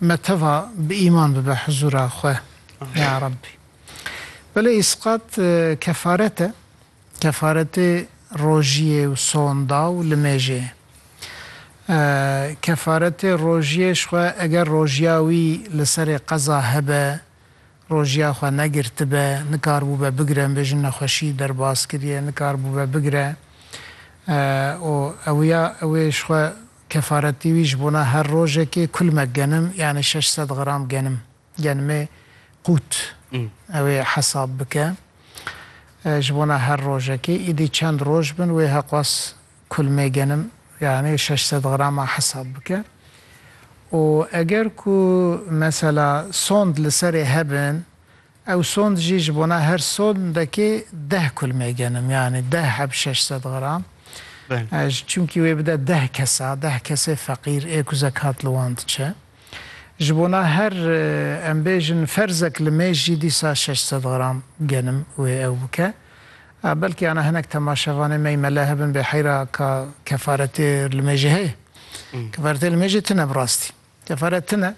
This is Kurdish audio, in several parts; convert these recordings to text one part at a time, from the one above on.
Me teva bi îman bibe hizûra xwe ya Rabbî. Belê îsqat kefaret e, kefaretê rojiyê û sonda û limêjê ye. Kefaretê rojiyê ji xwe eger rojiya wî li serê qeza hebe, rojiya xwe negirtibe, nikaribûbe bigire, nibêjin nexweşî derbas kiriye, nikaribûbe bigire û ew ya ew ê ji xwe Kefaretî wî ji bona her rojekê kulmek genim yanî şeş sed gram genim, genimê qût ew ê hesab bike ji bona her rojekê, îdî çend roj bin wê heqwas kulmê genim yanî şeş sed grama hesab bike û eger ku mesela sond li serê hebin Ew sond jî ji bona her sondekê deh kulmê genim yanî deh heb şeş sed gram. Ji çimkî wê bide deh kesa, deh kesê feqîr ê ku zekat li wan diçe. Ji bona her em bêjin ferzek li mêj jî dîsa şeş sed gram genim wê ew bike. Belkî ana hinek temaşevanê me mele hebin bê heyra ka kefaretê li mêjê heye. Kefaretê li mêjê tine bi rastî. Kefare tune,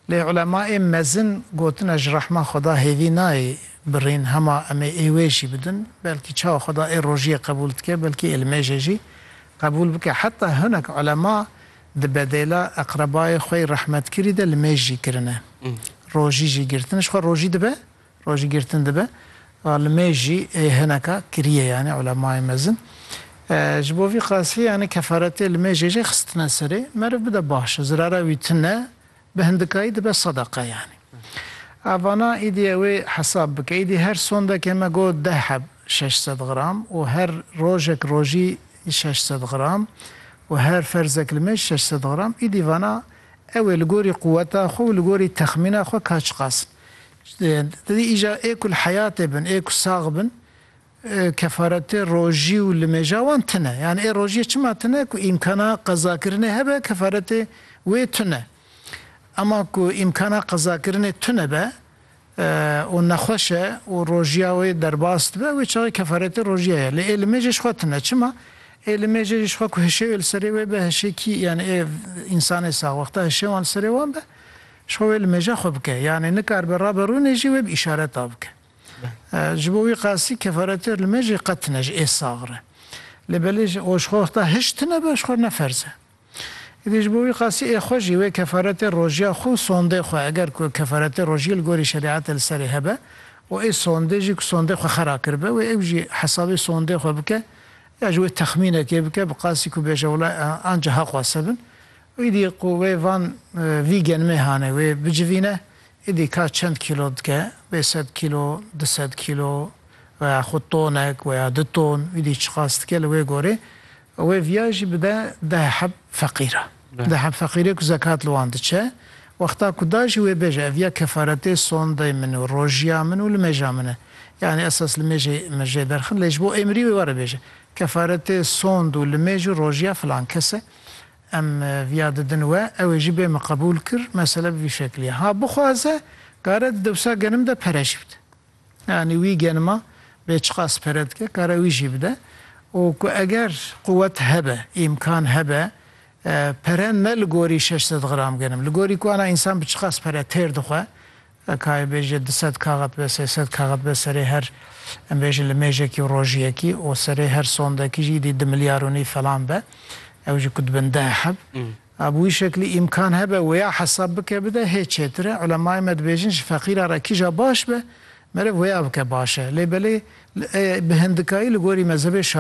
lê ulemaê mezin gotine ji rehma Xweda hêvî nayê birîn hema em ê êwê jî bidin, belkî çawa Xweda ê rojiyê qebûl dike belkî ê li mêjê jî qebûl bike. Heta hinek ulema di bedêla eqrebayê xwe yê rehmetkirî de li mêj jî kirine. Rojî jî girtin ji xwe rojî dibe Rojî girtin dibe, va li mêj jî ê hineka kiriyê yanî ulemayê mezin ji bo vî qasî yanî kefaretê li mêjê jî xistine serê, meriv bide baş e, zirara wî tu ne, bi hindikayî dibe sedeqa yanî. A vana îdî ew ê hesab bike, îdî her sondekê me got deh heb şeş sed gram û her rojek rojî şeş sed gram û her ferzek li mêj şeş sed gram, îdî vana ew ê li gorî quweta xwe û li gorî texmîna xwe ka çiqas in. Ti dê îja ê ku li heyatê bin, ê ku sax bin, kefaretê rojî û limêja wan tune. Yan ê rojiyê çima tune ku îmkana qezakirinê hebe kefaretê wê tune. Ema ku îmkana qezakirinê tunebe û nexweş e û rojiya wê derbas dibe wê çaxê kefaretê rojiya ye. Lê ê limêjê ji xwe tune. Çima? Ê limêjê jî ji xwe ku hişê wê li serê wê be hişê kî yan ê însanê sax wexta hişê wan li serê wan be Ji xwe wê li mêja xwe bike, yanî nikaribe rabe rûnê jî wê bi îşaret a bike. Ji bo wî qasî kefaretêr li mêjê qet tine ji ê sax re. Lê belê ji o ji xwe heta hişt tinebe ji xwe ne ferz e. Îdî ji bo wî qasî ê xwe jî wê kefaretê rojiya xwe û sondê xwe eger ku kefaretê rojiyê li gorî şerîetê li serê hebe û ê sondê jî ku sondê xwe xera kiribe wê ew jî hesabê sondê xwe bike ya ji wê texmînekê bike bi qasî ku bêje wila anca heq wase bin Îdî ku wê van vî genimê hane wê bicivîne, îdî ka çend kîlo dike, bê sed kîlo, du sed kîlo veya xwe tonek veya du ton, îdî çiqas dike li wê gorê û wê viya jî bide deh heb feqîra. Deh heb feqîrê ku zekat li wan diçe, wexta ku da jî wê bêje ev ya kefaretê sondeyê min û rojiya min û limêja min e. Yanî esas limêjê min jê derxin lê ji bo êmirî wê were bêje kefaretê sond û limêj û rojiya filan kes e. Em viya didin we, ew ê jî bê min qebûl kir, mesele bi vî şeklî ye. Ha bixwaze kare di dewsa genim de pere jî bide. Yanî wî genima bê çiqas pere dike kare wî jî bide û ku eger quwet hebe, îmkan hebe pere ne li gorî şeş sed gram genim, li gorî ku ana însan bi çiqas pere têr dixwe, Kayê bêje du sed kaxet be, sê sed kaxet be serê her em bêjin limêjekî û rojiyekî û serê her sondekî jî îdî du milyar û nîv felan be. Ew jî ku dibin deh heb. A bi wî şeklî îmkan hebe wêya hesab bike bide hê çêtir e. Ulemayê me dibêjin ji feqîra re kîja baş be meriv wêya bike baş e. Lê belê bi hindikayî li gorî mezhebê